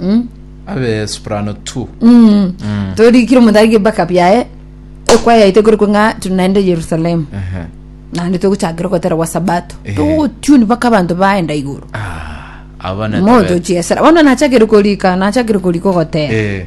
Mm. abe soprano tu Mm. torikire omothariki mpaka biaye ekwayaite kore kwe ng'a tiri naende yerusalemu Ehe. naende togochakera ogotera gwa sabato Ehe. togotuni mpaka abanto baenda igoro Ah, abana moto tabe- chiesera bono nachakire korika nachakire korika ogotera Eh,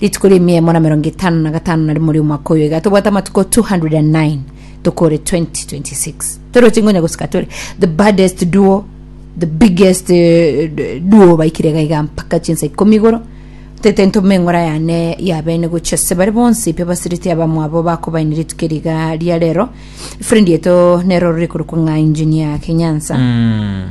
Rituko ria emiemo na emerongo etano na gatano na rimo ri'omwaka oyo iga tobwate amatuko 209 tokore 2026 toroche ngonya gosika tore the baddest duo the biggest eh, d- duo baikire iga iga mpaka chinsa ikomi igoro tete ntume eng'ora yane yabene gochia se bare bonsi pe basiriti abamwabo bakobaini rituko riga ria rero friend yeto nero rori korokwa ng'a engineer kenyansa Mm.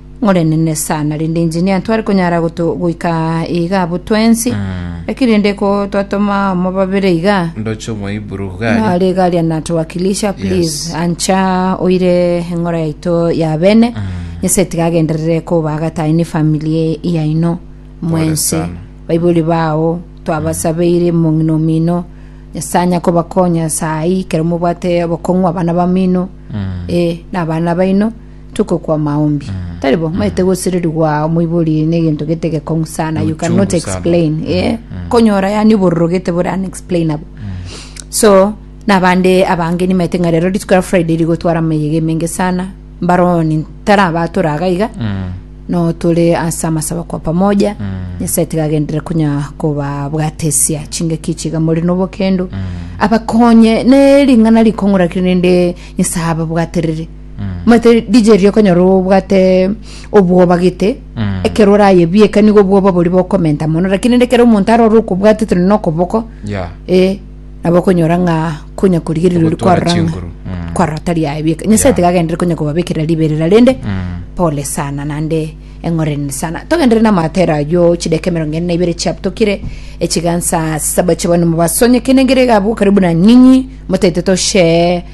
Morenene sana rende engineer ntware konyara goto goika iga abo twensi lakini rende ko twatoma omo babere iga ndoche omoiburu gari nare gari anatuwakilisha please Yes. ancha oire eng'ora yaito ya bene nyasae tiga agenderere koba gatayi ne family yaino mwensi sana. baibori bao twabasabeire mong'ina omino nyasae anya kobakonya sayi kero mobwate obokong'u abana bamino eh na abana baino tokokwa maombi tari bo maete gosererigwa moibori negento gete gekong'u sana you cannot Uchungu sana. explain eh konyora yani obororo gete bore unexplainable so nabande abange nimaete ng'a rero rituko ya friday rigotwara ameyega emenge sana mbaroni tarabatora agaiga Mm. no tore ase amasaba kwa pamoja nyasaye tigagendere kunya kobabwatesia chingaki chiga muri nobokendo abakonye ne ring'ana rikong'uraki rende nyasaye ababwaterere omanyete DJ riria okonyora obwate obwoba gete Mm. ekero orayebieka nigo obwoba boria bokomenta mono lakini rende ekero omonto arore okobwatete nonye na okoboko Yeah. e nabo okonyora ng'a konya korigereria ori Ogotwara kwarora ng'a chinguru. Mm. kwarora tari ayebieka nyasae Yeah. tigagendere konya kobabekera riberera rende Mm. pole sana nande eng'oreni sana togendere namatera ayo chideka emerongo ene na ibere chiabtokire echigansa saba chibone mubasonye kenengere gabu karibu na nyinyi motete toshee